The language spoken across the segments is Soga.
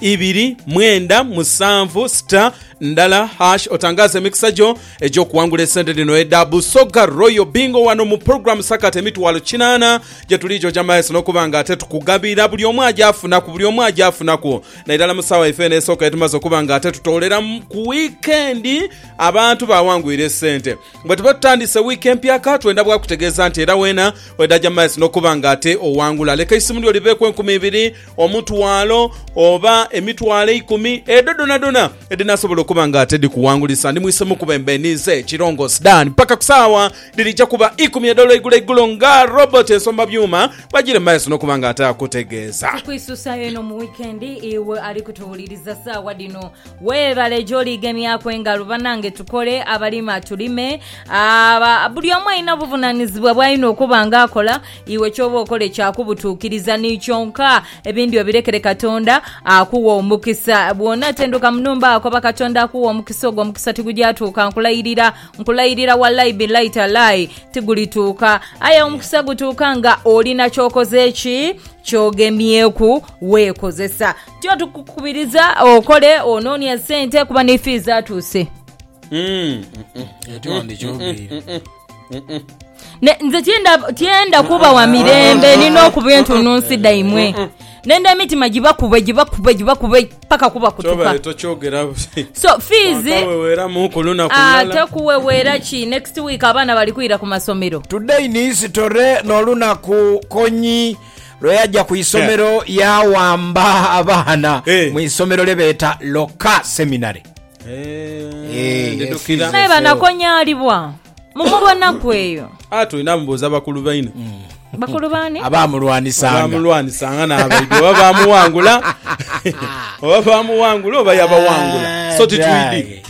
ibiri mwenda musanvu sita ndala hash otangaaze emikisa gyo egy'okuwangula esente dhino edha Busoga Royal Bingo wano mu pulogulaamu Sakata Emitwalo Kinaana gyetuli gyoja maeso n'okuba nga ate tukugabira buli omu aje afunaku buli omu aje afunaku nairala mu saawa yaife eno esooka yetumaze okuba nga ate tutoolera ku wiikendi abantu bawangwire esente. Bwe tuba tutandise wiiki empya ka twenda bwakutegeeza nti era weena wedaja maeso n'okuba nga ate owangula leka eisimu lyo libeeku enkumi ibiri omutwalo, oba emitwalo eikumi, edho dhonadhona edhinasobola okuba nga ate dhikuwangulisa, ndi mwise mukuba embeeniize Kilongosi Dan paka ku saawa dhirija kuba ikumi edh'olweigulo eigulo nga Robert Ensomba Byuma bwajira mu maiso n'okuba nga ate akutegeeza. Tukwisusayo eno mu wikendi, iwe ali kutuwuliriza saawa dhino weebale gyoli gemyaku engalo banange tukole, abalima tulime, abo buli omu alina obuvunanizibwa bwalina okuba nga akola. Iwe ky'oba okole kya kubutuukiriza ni kyonka, ebindi obirekere Katonda, akuwe omukisa. Bw'onaatenduka mu nhumba, koba Katonda akuwe omukisa, ogwo omukisa tigugyatuuka, nkulayirira, nkulayirira wallai billai tallai, tigulituuka. Aye omukisa gutuuka nga olina ky'okoze ki? Ky'ogemyeku, weekozesa. Tyo tukukubiriza okole, onoonie sente kuba ni fee zaatuuse. Ekyo wandikyogeire. Ne, nze tyenda tyenda kuba wa mirembe nina okuba entunnunsi dhaimwe nenda emitima gibakube gibakube gibakube paka kubakutuka Kyobere tokyogera buti. so fees Akaweweramu ku lunaku Ah, lulala. tekuweweera ki next week abaana bali kwira ku masomero Today in history n'olunaku Konyi lwe yaja ku isomero yaawamba abaana Eh. mu isomero lye beeta Loka Seminary. Eh, ndidukira. efizi. Naye banakonyalibwa mumubona kweyo Ah, tulina mubuuza bakulu baine bakulu bani abamulwanisanga bamulwanisanga n'abaidwe oba bamuwangula oba bamuwangula oba yabawangula so titwidi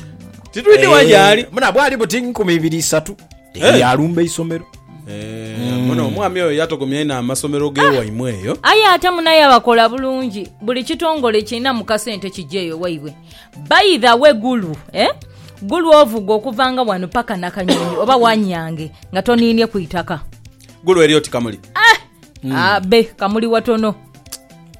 titwidi wajaali muna bwali buti nkumi ibiri isatu Eh. yalumba isomero Eh, muno omwami oyo yatogomya ino amasomero gewaimwe eyo aye ate munaye abakola bulungi buli kitongole kirina mukasente kijeeyo waibwe By the way Gulu eh Gulu ovuga okuvanga wano paka Nakanyonyi oba wanyange nga toninie ku itaka. Gulu eri oti Kamuli. Eh! Mm. Abe ah, Kamuli watono.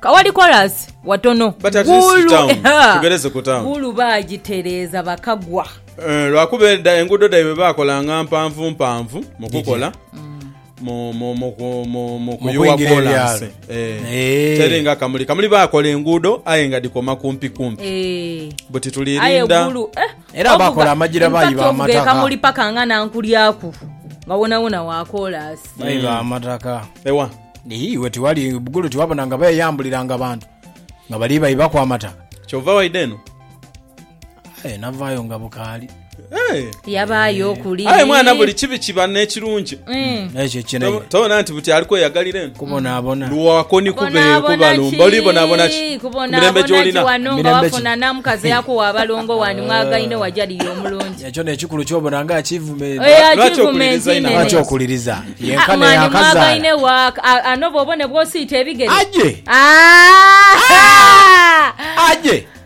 Kawali chorus watono. But at least Gulu, town. Eh, Tugereze ku town. Gulu bagitereeza bakagwa. Eh, lwakuba edda enguudo dhaibwe baakolanga mpanvu mpanvu mu kukola. Mm. mu mu mu ku- mu mu Mu kuyuwa kwingira kolansi ebyalo. Eh. Eh. teri nga kamuli kamuli bakola enguudo aye nga dikoma kumpi kumpi Eh. buti aye tulirinda gulu eh, Era ovuga- bakola amagira in fact bayiba ovuga amataka. ekamuli paka nga nankulyaku nga wonawona wakolasi baiba amataka ewa iwe tiwali bugulu tiwabona nga beyambuliranga abantu nga bali baibaku amataka kyova waideno Aye navaayo nga bukaali. Yabaayo okuli. Aye mwana buli kibi kiba n'ekirungi. Mm. Ekyo kinene. Tobona nti buti ali kweyagalira eno. Kubonaabona. Luwako ni kubeeyo kubalumba. Oli bonaabona ki? Kumirembe gy'olina. Wano nga wafuna namukazi yakuwa abalongo wani mwagaine wajaliri omulungi. Ekyo n'ekikulu kyobona nga achievement. Eh, achievement nene. Lwaki okuliriza? Ah, Yenkana yakazaala. Mwagaine wa anoba obone bwosiita ebigere. Aje! Ah! Aje!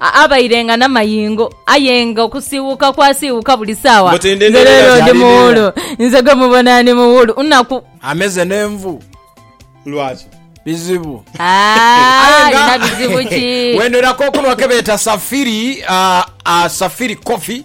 Abairenga n'amayingo, aye nga okusiiwuuka kwasiiwuuka buli saawa. Nze leero ndi muwuulu. Nze gwe mubona ndi muwuulu. Nnaku. Ameze n'envu. Lwaki? Bizibu. Aye nga. Alina bizibu ki? Wendheraku okunhwa ke beeta Safiri, Safiri Coffee.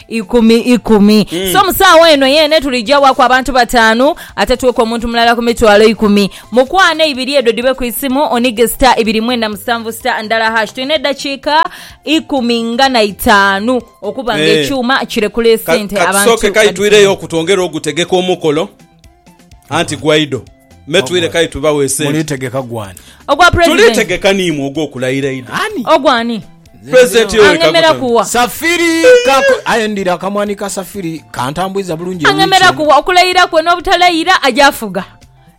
ikumi ikumi mm. so musaawa eno yeene tulijawaaku abantu bataanu ate tuweku omuntu mulala ku mitwalo ikumi mukwaano eibiri edho dhibe ku isimu onige sita ibiri mwenda musanvu sita ndala hash tulina eddakiika ikumi nga na itaanu okuba nga eh. ekyuma kirekula esente abantu kasooke kaitwireyo okutwongera ogutegeka omukolo anti Guaido metwire kale tubawe sente mulitegeka gwani ogwa president tulitegeka niimwe ogw'okulayira ido ani ogwani president Yoweri angemera Kaguta kuwa safiri kako aye ndira akamwani ka safiri kantambwiza bulungi angemera ewiki. kuwa okulayira kwe n'obutalayira ajafuga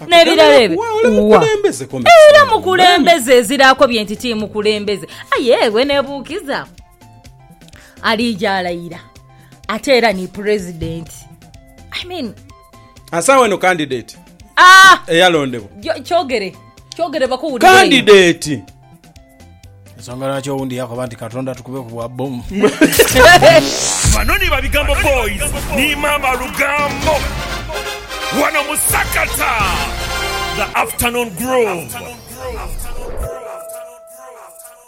n'ebirala ebyo Wa, ole Wa. mukulembeze ko era mukulu. mukulembeze eziraako bye nti ti mukulembeze aye ewe nebuukiza aliija alayira ate era ni president i mean asawa eno candidate ah eyalondebwa kyogere kyogere bakuwulire candidate ensonga lwaki owundi yakoba nti katonda tukube ku bwa bomu bano ni babigambo boys ni mama lugambo wano musakata the afternoon groove